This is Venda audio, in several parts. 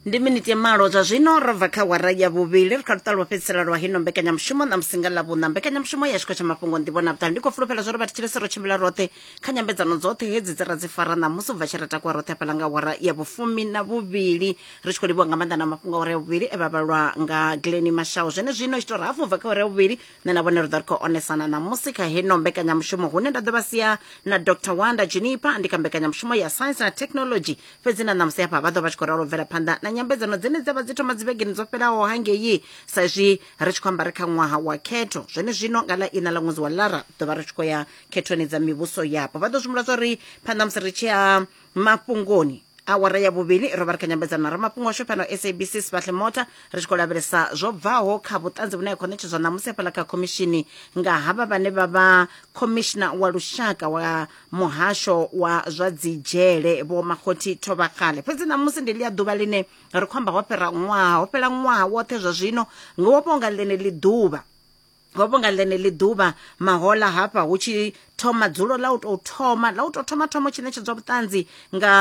ndi miniti ya malo zwa zwino ro bva kha wara ya vhuvhili ri kha luṱa lwo fhedzisela lwa hino mbekanyamushumo na musinga ḽa vhuṋa mbekanyamushumo ya tshikho tsha mafhungo ndivho na vhuṱali ndi khou fulufhela zwa uri vhathu tshilese ro tshimbila roṱhe kha nyambedzano dzoṱhe hedzi dzi ra dzi fara ṋamusi u bva tshi ra takuwa roṱhe hafhaḽa nga wara ya vhufumi na vhuvhili ri tshi khou livhiwa nga maanḓa na mafhungo a wara ya vhuvhili e vha vhalwa nga gleni mashawu zwene zwino ita uri hafu u bva kha wara ya vhuvhili nṋe na vhone ri ḓo ri khou onesana ṋamusi kha heno mbekanyamushumo hune nda ḓo vha sia na dr wanda junipa ndi kha mbekanyamushumo ya science na technology fhedzi na ṋamusi hafha vha ḓo vha tshi khou ralo bvela phanḓa na nyambedzano dzine dza vha dzi thoma dzivhegeni dzo fhelaho hangei sa izwi ri tshi khou amba ri kha ṅwaha wa khetho zwone zwino nga ḽa ina ḽa ṅwedzi wa lara ḓo vha ri tshi khou ya khethoni dza mivhuso yapo vha ḓo zwimula zwa uri phanḓa musi ri tshi ya mafhungoni awara ya vhuvhili ro vha ri kha nyambedzano na ramafhungo washu fhano sabc sibadle mota ri tshi khou lavhelesa zwo bvaho kha vhuṱanzi vhune ha khou ṋetshedzwa ṋamusi hafhaḽa kha khomishini nga havha vhane vha vha khomishina wa lushaka wa muhasho wa zwa dzidzhele vho makhothi thovhakgale fhedzi ṋamusi ndi ḽi a ḓuvha ḽine ri khou amba ho fhira ṅwaha ho fhela ṅwaha woṱhe zwa zwino ngo vhonga ḽeneḽi ḓuvha hovho nga ḽeneḽi ḓuvha mahola hafha hu tshi thoma dzulo ḽa u tou thoma ḽa u tou thoma thoma tshi ṋetshedzwa vhuṱanzi nga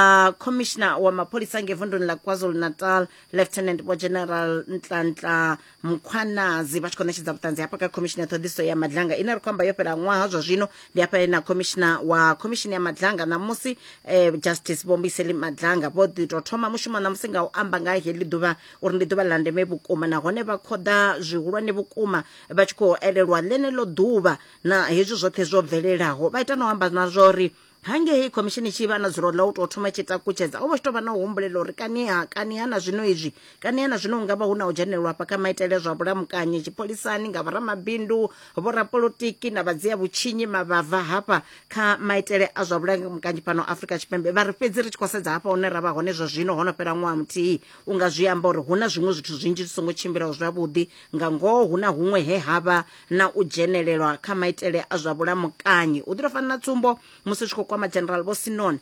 commissioner wa mapholisa nge vunduni ḽa kwazulu natal lieutenant vho general ntlantla mkhwanazi vha tshi khou ṋetshedza vhuṱanzi hafha kha commissioner ṱhoḓiso ya madlanga ine ri khou amba yo fhela ṅwaha zwa zwino ndi hafha na commissioner wa commission ya madlanga ṋamusi eh, justice vho mbiseli madlanga vho ḓi tou thoma mushumo ṋamusi nga u amba nga heḽi ḓuvha uri ndi ḓuvha ḽa ndeme vhukuma nahone vha khoḓa zwihulwane vhukuma vha tshi khou elelwa ḽeneḽo ḓuvha na hezwi zwoṱhe zwo bvelelaho vha ita na u amba na zwa uri hangei khomishini tshi vha na dzulo ḽa u tou thoma tshi takutshedza o vha tshi tou vha na u humbulela uri kaniha kaniha na zwino izwi kaniha na zwino nga vha hu na u dzhenelelwa hafha kha maitele zwa vhulamukanyi tshipholisani nga vhoramabindu vhorapolotiki na vhadzia vhutshinyi mavhava hafha kha maitele a zwa vhulamukanyi fhano afrika tshipembe vha ri fhedzi ri tshi khou sedza hafha hune ra vha hone zwa zwino ho no fhela ṅwaha muthihi U nga zwi amba uri hu na zwiṅwe zwithu zwinzhi zwi songo tshimbilaho zwavhuḓi. Nga ngoho, hu na huṅwe he ha vha na u dzhenelelwa kha maitele a zwa vhulamukanyi. U ḓi tou fana na tsumbo, musi zwi tshi khou kwama General Vho Sinon,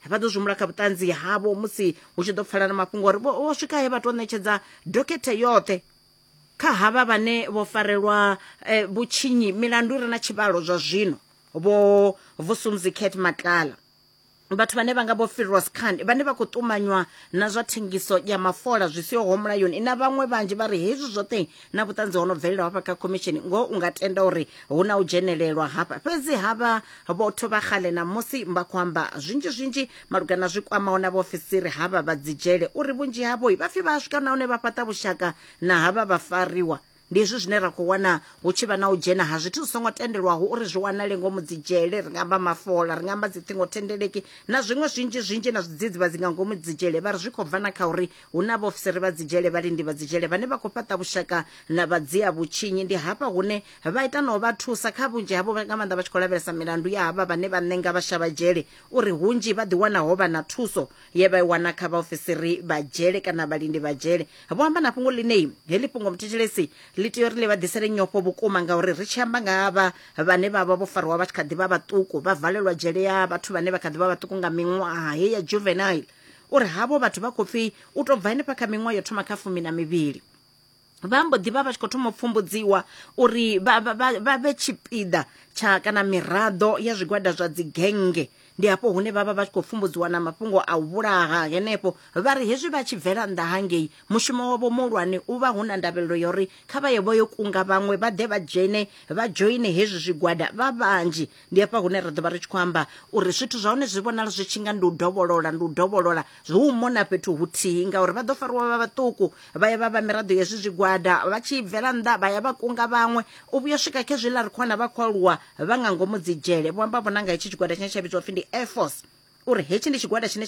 vha ḓo zwimula kha vhuṱanzi havho musi hu tshi ḓo pfala na mafhungo uri vho vho swika he vha tou ṋetshedza dokhethe yoṱhe kha havha vhane vho farelwa eh, vhutshinyi milandu i re na tshivhalo zwa zwino, Vho Vusumuzi Cat Matlala. vhathu vhane vha nga vho Firoz Khan vhane vha khou ṱumanywa na zwa thengiso ya mafola zwi siho mulayoni na vhaṅwe vhanzhi vha ri hezwi zwoṱhe na vhuṱanzi ho no bvelelaho hafha kha khomishini ngoho u nga tenda uri hu na u dzhenelelwa hafha fhedzi havha vhotho vha xale na musi vha khou amba zwinzhi zwinzhi malugana zwi kwamaho na vhaofisiri havha vha dzidzhele uri vhunzhi havho vha pfi vha a swika nahone vha fhaṱa vhushaka na havha vha fariwa Ndi hezwi zwine ra khou wana hu tshi vha na u dzhena ha zwithu zwi songo tendelwaho uri zwi wanale ngomu dzidzhele, ri nga amba mafola, ri nga amba dziṱhingothendeleki na zwiṅwe zwinzhi-zwinzhi na zwidzidzivhadzi nga ngomu dzidzhele. Vha ri zwi khou bva na kha uri hu na vhaofisiri vha dzidzhele, vhalindi vha dzidzhele vhane vha khou fhaṱa vhushaka na vhadzia-vhutshinyi. Ndi hafha hune vha ita na u vha thusa, kha vhunzhi havho nga maanḓa vha tshi khou lavhelesa milandu ya havha vhane vha ṋenga vhashavhadzhele, uri hunzhi vha ḓiwana ho vha na thuso ye vha i wana kha vhaofisiri vha dzhele kana vhalindi vha dzhele vho amba na fhungo ḽinei heḽi fhungo muthetshelesi ḽi tea uri ḽi vha ḓisele nyofho vhukuma ngauri ri tshi amba nga vha vhane vha vha vho fariwa vha tshi kha ḓi vha vhaṱuku vha valelwa dzhele ya vhathu vhane vha kha ḓi vha vhaṱuku nga miṅwaha he ya juvenile uri havho vhathu vha khou pfi u tou bva henefha kha miṅwaha yo thoma kha fumi na mivhili vha mbo ḓi vha vha tshi khou thoma u pfumbudziwa uri vha vhe tshipiḓa tsha kana miraḓo ya zwigwada zwa dzigenge ndi hafho hune vha vha vha tshi khou pfumbudziwa na mafhungo a u vhulaha henefho vha ri hezwi vha tshi bvela nnḓa hangei mushumo wavho muhulwane u vha hu na ndavhelelo ya uri kha vha ye vho yo kunga vhaṅwe vha ḓe vha dzhene vha dzhoine hezwi zwigwada vha vhanzhi ndi hafha hune ra ḓo vha ri tshi khou amba uri zwithu zwa hone zwi vhonala zwi tshi nga ndi u dovholola ndi u dovholola zwi u mona fhethu huthihi ngauri vha ḓo fariwa vha vhaṱuku vha ya vha vha miraḓo ya zwi zwigwada vha tshi bvela nnḓa vha ya vha kunga vhaṅwe u vhuya swika khe zwiḽa ri khou wana vha khou aluwa vha nga ngomu dzi dzhele vho amba vhona nga hetshi tshigwada tshine tsha vhidzwa pfhi ndi air force uri hetshi ndi tshigwada tshine